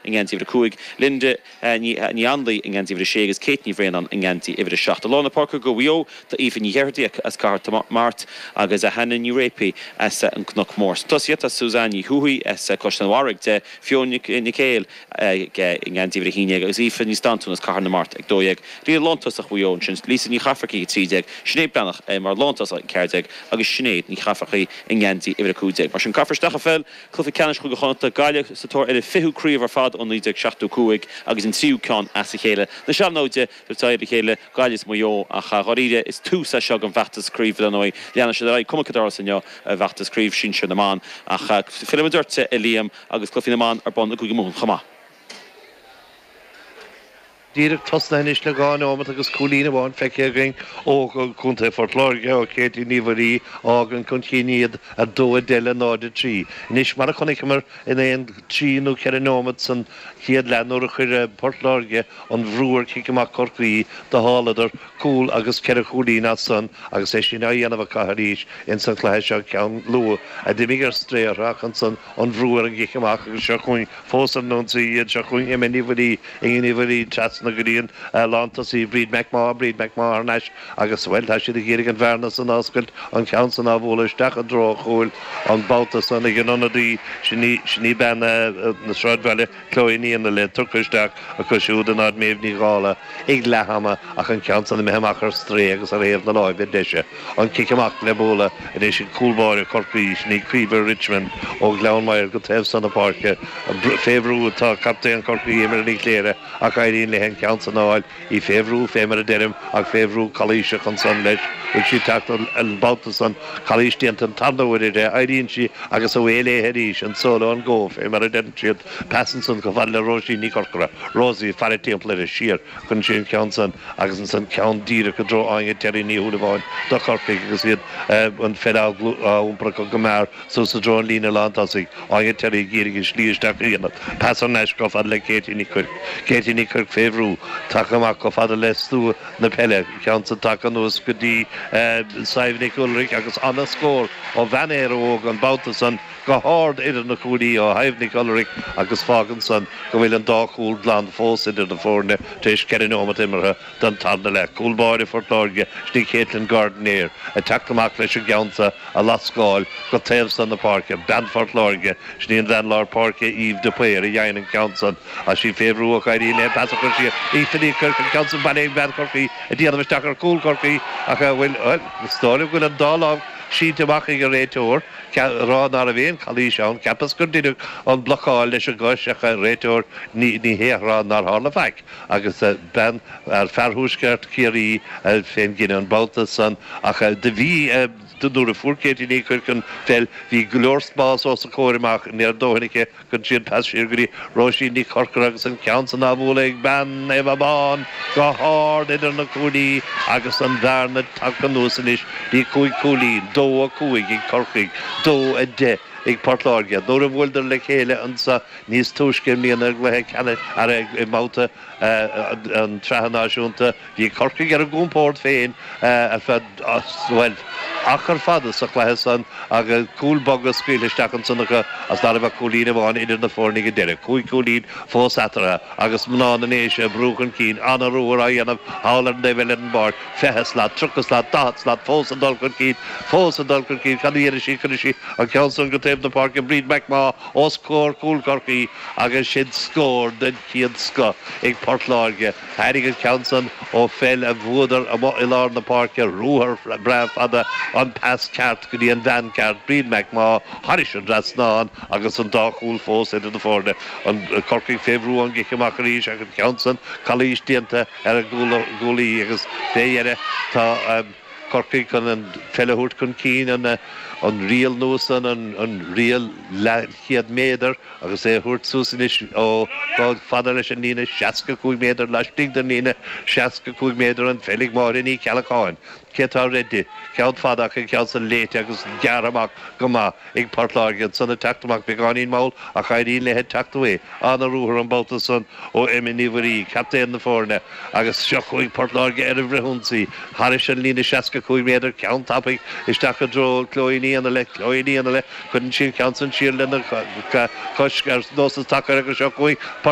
i ngeansaí uimhir a cúig, Linda Ní Anluí i ngeansaí uimhir a sé agus Kate Ní Bhraonáin i ngeansaí uimhir a seacht. I lár na páirce do Mhaigh Eo tá Aoife Nic Oireachtaigh as Cathair Mart agus Hannah Ní Réapaí as an gCnoc Mór. Sa tosaíocht tá Suzanne Ní Thuathaigh as Caisleán an Bharraigh deich, Fiona Nic Éil i ngeansaí uimhir a haon déag agus Aoife Ní Standúin as Cathair na Mart ag dó dhéag. Líne lántosach Mhaigh Eo ansin, Lisa Ní Chafarcaigh ag trí déag, Sinéad Breathnach mar lántosach ag ceathar déag agus Sinéad Ní Chafarcaigh i ngeansaí uimhir a cúig déag. Mar sin, caithfear isteach an pheil! Cluiche Ceannais Chúige Chonnacht, Gaillimh, sa tóir ar a fichiú craobh ar fad ó 1975 agus an tríú ceann as a chéile na sean-naimhde ag tabhairt aghaidh ar a chéile, Gaillimh is Maigh Eo. Ach a dháiríre, is tús é seo don bhfeachtas craoibhe dar ndóigh. Leanann siad ar aghaidh cuma céard a tharlós inniu i bhfeachtas craoibhe sinsir na mban ach filleann muid ort, a Liam, agus cluichí na mban ar bun i gCúige Mumhan chomh maith. Díreach tosnaithe anois le dhá neomat agus cúilín amháin feicthe againn ó Chontae Phort Láirge, ó Katie Ní Mhuirí, a fhágann chun chinn iad 2-10 le 0-3. Anois, mar a chonaiceamar, in aon trí nó ceithre neomat san chéad leath nuair a chuir Port Láirge an bhrú ar chic amach Chorcaí, d'fháladar cúl agus ceithre chúilín as san agus é sin á dhéanamh acu arís insan chluiche seo, ceann luath a d'imigh ar strae orthu ach ansan, an bhrú ar an gcic amach agus seo chugainn fós ar an ionsaí iad, seo chugainn Emma Ní Mhuirí, Iníon Ní Mhuirí, trasna go dtí an lántosaí Bríd McMaugh, Bríd McMaugh thar n-ais agus, bhuel, tá siad ag iarraidh an bhearna san a oscailt, an ceann san á bhualadh isteach i dtreo an chúil an babhta san ag an ionadaí, sin í bean na Sráidbhaile. Chloe Ní Fhionnaíle tugtha isteach acu siúd in áit Méabh Ní Dhálaigh ag leath ama ach an ceann san imithe amach ar strae agus ar thaobh na láimhe deise an cic amach le bualadh anois ag cúl báire Chorcaí sin í Caoimhe Richmond ó Ghleann Maghair go taobh san na páirce. Fé bhrú atá captaen Chorcaí Emma Ní Chléirigh ach éiríonn léi an ceann san a fháil í fé bhrú fé mar a deirim, ach fé bhrú calaoiseach ansan leis, bhfuil sí ag teacht an babhta san, calaois déanta an tarna huair uirthi, éiríonn sí agus away léithe arís, an solo, an go, fé mar a deireann siad, pas ansan chomh fada le Rosie Ní Chorcora, Rosie, faire timpeall uirthi, siar, cuireann sí an ceann san agus ansan ceann díreach i dtreo Áine Terry Ní Shúilleabháin do Chorcaigh agus iad an pheil á iompar acu go mear, Suas i dtreo an líne lántosaigh, Áine Terry ag iarraidh a slí isteach a dhéanamh, pas thar n-ais chomh fada le Katie Ní Chuirc, Katie Ní Chuirc fé bhrú, tagtha amach chomh fada le stua na peile, ceann san tagtha anuas go dtí Sadhbh Nic Ualraic agus ana-scór ó bhean Éire Óg an babhta san go hard idir na cuaillí ó Shadhbh Nic Ualraic agus fágann san go bhfuil an dá chúl glan fós idir na foirne tar éis ceithre neomat imeartha. D'fhan Tarna le cúl báire Phort Láirge sin í Katelyn Gardner ag teacht amach leis an gceann seo a lascadh go taobh san na páirce. Bean Phort Láirge sin í an bhean lár páirce Eve de Paor a dhein an ceann san agus í fé bhrú ach éiríonn léi an pas a chur siar. Katie Ní Chuirc an ceann san bailithe ag bean Chorcaí ag déanamh isteach ar chúl Chorcaí ach a bhfuil, bhuel, is dóigh liom go bhfuil an dá lámh sínte amach ag an réiteoir, chun a rá ná raibh aon chalaois ann, cheapas gur deineadh an blocáil leis an gcois ach an réiteoir, ní, ní hea ag rá nár tharla faic. agus bean fear thuaisceart Chiarraí fén gcinneadh an babhta san ach do bhí nuair a fuair Katie Ní Chuirc an pheil bhí go leor spás os a comhair amach ní haon dóithín í cuireann sí an pas siar go dtí Rosie Ní Chorcora agus an ceann san á bhualadh ag bean Naomh Abán go hard idir na cuaillí agus an bhearna tagtha anuas anois go dtí cúig cúilín, dó a cúig ag Corcaigh, dó a deich ag Port Láirge nuair a bhuaileadar le chéile an sa. Níos túisce i mbliana i gcluiche ceann de réamhbhabhtaí na Sraithe Náisiúnta, bhí Corcaigh ar a gcompórd féin ar feadh, bhuel, achar fada sa chluiche san agus cúil boga scaoilte isteach ansan acu agus ná raibh ach cúilín amháin idir na foirne ag an deireadh, cúig chúilín fós eatarthu agus mná na nDéise ag brú chun cinn, an-ruathar á dhéanamh thall ar an dtaobh eile den bpáirc, fiche slat, tríocha slat, daichead slat, fós ag dul chun cinn, fós ag dul chun cinn, cad a dhéanfaidh siad, cuirfidh siad an ceann san go taobh na páirce, Bríd McMaugh, os comhair chúl Chorcaí agus sin scór den chéad scoth ag Port Láirge. Tháinig an ceann san ó pheil a bhuadar amuigh i lár na páirce, ruathar breá fada, an pas ceart go dtí an bhean cheart, Bríd McMaugh, thairis an dtrasnán agus an dá chúl fós idir na foirne. An Corcaigh fé bhrú ón gcic amach arís ach an ceann san calaois déanta ar an gcúlaí agus fé dheireadh tá an. Corcaigh chun an pheil a thabhairt chun cinn, an riail nua san, an riail leathchéad méadar agus é á thabhairt suas anois chomh fada leis an líne 65 méadar laistigh den líne 65 méadar an pheil ag Máire Ní Cheallacháin, cé atá roimpi? Ceann fada aici, ceann san léite agus gearrtha amach go maith. Ag Port Láirge ansan ag teacht amach beagáinín mall ach éiríonn léi teacht uaidh. An-ruathar an babhta san ó Emma Ní Mhuirí, captaen na foirne, agus seo chugainn Port Láirge ar an bhfrithionsaí thairis an líne 65 méadar ceann tapaidh isteach i dtreo Chloe Ní Fhionnaile. Chloe Ní Fhionnaile, cuireann sí an ceann san siar lena cois ar nós sa tsacar agus seo chugainn Port